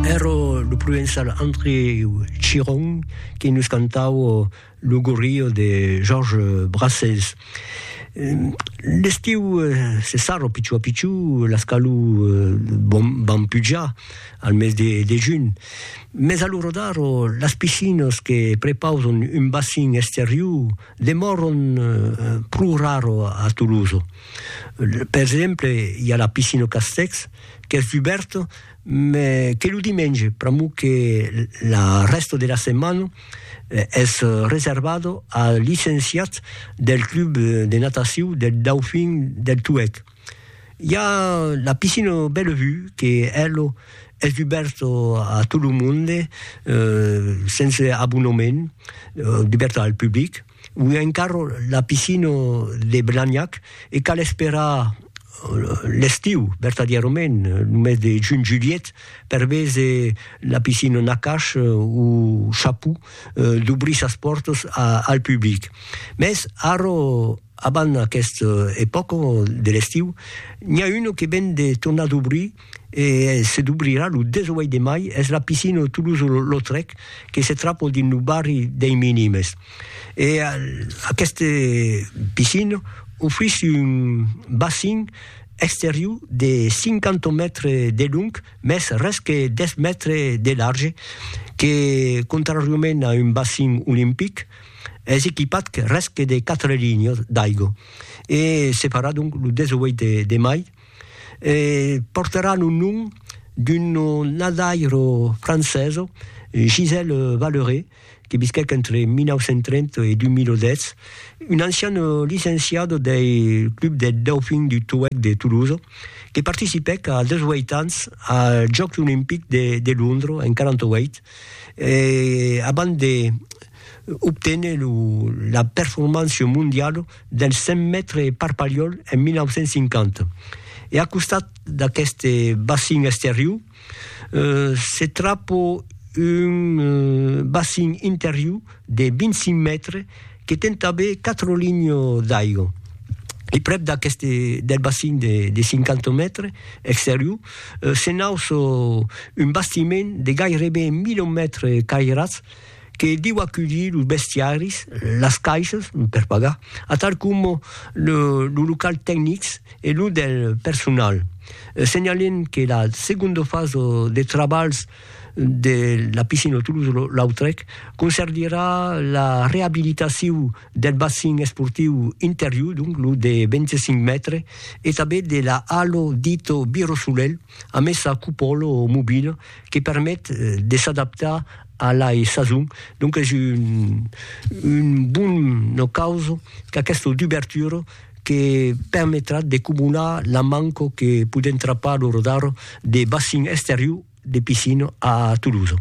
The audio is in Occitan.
Ero lo provençal André Chiron qui nos cantavo lo gorrio de Georges Brassens. L'estiu se sarro pichó a pichó, las calor van pujar al mes de junh, mes a lo rodar las piscinas que prepausan un bacin exterior demòran pro raro a Tolosa. Per exemple, i a la piscina Castèx, qu'es dubèrt, me que lo dimenge, pr'amor que la rèsta de la setmana es reservada als licenciats del club de natacion del Dauphin del Tuèlh. I a la piscina Bellevue que ela es dubèrta a tot lo monde, sense abonament, dubèrta al public. Ui encara la piscina de Blagnac e cal esperar l'estiu, vertadièrament, lo mes de junh-julhet, per véser la piscina Nakash o Chaput dobrir sas pòrtas al public. Mès ara, abans aquesta epòca de l'estiu, n'i a una que ven de tornar dobrir e se dubrirà lo 18 de mai es la piscina de Toulouse-Lautrec que se trapo dins lo barri dei Minimes e aquesta piscina ofrís un bassin exterior de 50 mètres de long mès res que 10 mètres de large que contrariament a un bassin olimpic es equipat res que de 4 linhas d'aigua e se farà donc lo 18 de mai. e portaràn un nom d'un nadaire francés, Gisèle Valleré, que visquèc entre 1930 e 2010, un ancian licenciat del Club des Dauphins du Touec de Toulouse, que participèc a 18 ans als Jòcs Olimpics de Londres en 48, e abans de obténer la performància mondiala dels 100 mètres per Palhol en 1950. E a costat d'aqueste bacin exterior se trapa un bacin interior de 25 mètres que ten tanben 4 linhas d'aiga. E prèp d'aqueste del bacin de 50 mètres exterior se nauça un bastiment de gaireben 1000 mètres cairats, que diu aculhir los bestiaris, las caisses per pagar, atal coma los locals tecnics e los del personal. Senhalem que la segonda fasa de trabalhs de la piscina Toulouse-Lautrec concerdirà la reabilitacion del bassin esportiu interior, donc lo de 25 mètres, e tanben de la halo dita Biro Solelh, amessa cupòla mobila que permet de s'adaptar a la sason, donc es un bon ocaus qu'aquesta dubertura que permetrà de comunar la manca que podèm trapar lo rodar de bacin esterior de piscina a Toulouse.